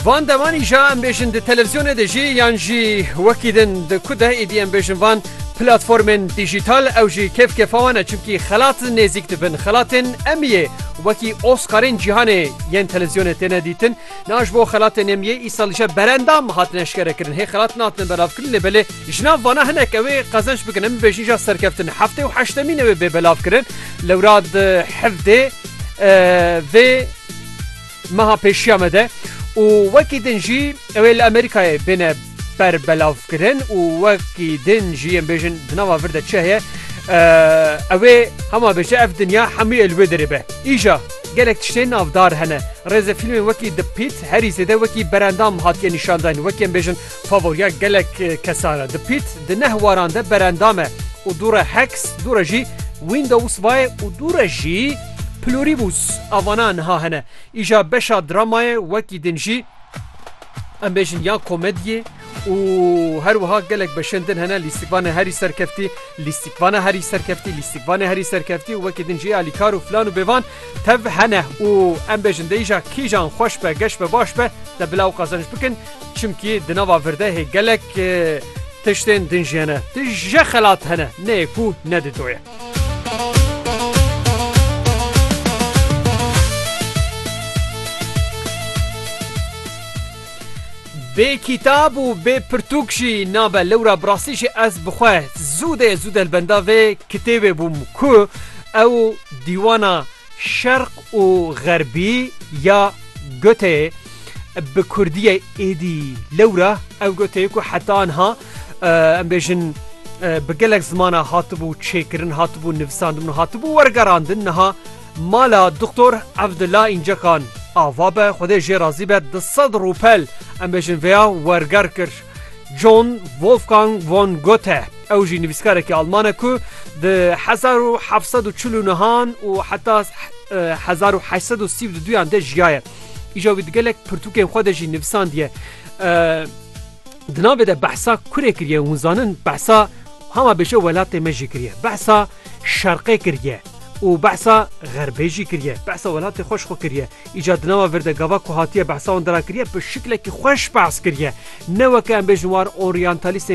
Van devan îşa em bêjin di televîzyonê de jî yan jî wekî din di ku de êdî em bêjin van platformên dîjîtal ew jî kêfkêfa wan e çimkî xelat nêzîk dibin xelatên Emmyê wekî Oscarên cîhanê yên televîzyonê têne dîtin niha ji bo xelatên Emmyê îsal îşa berendam hatine eşkerekirin hê xelat nehatine belavkirin lê belê jina vana hinek ew ê qezenç bikin em bêjin îşa serkeftin heftê û heştemîn ew ê bê belavkirin lewra di hevdê vê meha pêşiya me de û wekî din jî ew ê li Amerîkayê bêne berbelavkirin û wekî din jî em bêjin di nava vir de çi heye ew ê hema bêje ev dinya hemû ê li wê derê be îja gelek tiştên navdar hene rêzefîlmên wekî The Pit herî zêde wekî berendam hatiye nîşandan wekî em bêjin Favoriya gelek kesan e. Di pît di neh waran de berendam e û dû re Hex, dû re jî Windows vaye û dû re jî Pluribus a vana niha hene. Îja beşa dramayê wekî din jî em bêjin ya komediyê û her wiha gelek beşên din hene lîstikvanê herî serkeftî, lîstikvana herî serkeftî, lîstikvanê herî serkeftî û wekî din jî alîkar û filan û bêvan tev hene û em bêjin de îja kîjan xweş be, geş be, baş be te bila û qezenc bikin. Çimkî di nava virdehê gelek tiştên din jî hene. Di je xelat hene neyê ku ne di doye. Bê kîtab û bê pirtûk jî nabe lewra bi rastî jî ez bi xwe zûdê zû delbenda vê kitêbê bûm ku ew dîwana Şerq û Xerbî ya gotê bi kurdiyê êdî lewra ew gotê ku heta niha em bêjin bi gelek zimana hatibû çêkirin hatibû nivisandin hatibû wergerandin niha mala doktor Evdula Încekan ava be xwedê jê razî be di sed rûpel em bêjin vêya werger kir. John Wolfgang von Goethe, ew jî nivîskarekî alman e ku di hezar û heft sed û çil û nihan û heta hezar û heşt sed û sî û du duyan de jiyaye. Îja wî di gelek pirtûkên xwe de jî nivisandiye. Di navê de behsa kurê kiriye hûn zanin behsa hema bêje welatê me jî kiriye. Behsa şerqê kiriye û behsa xerbê jî kiriye. Behsa welatê xweş xwe kiriye. Îca di nava vir de gava ku hatiye behsa wan de ra kiriye bi şiklekî xweş behs kiriye. Ne weke em bêjin war oryantalîstên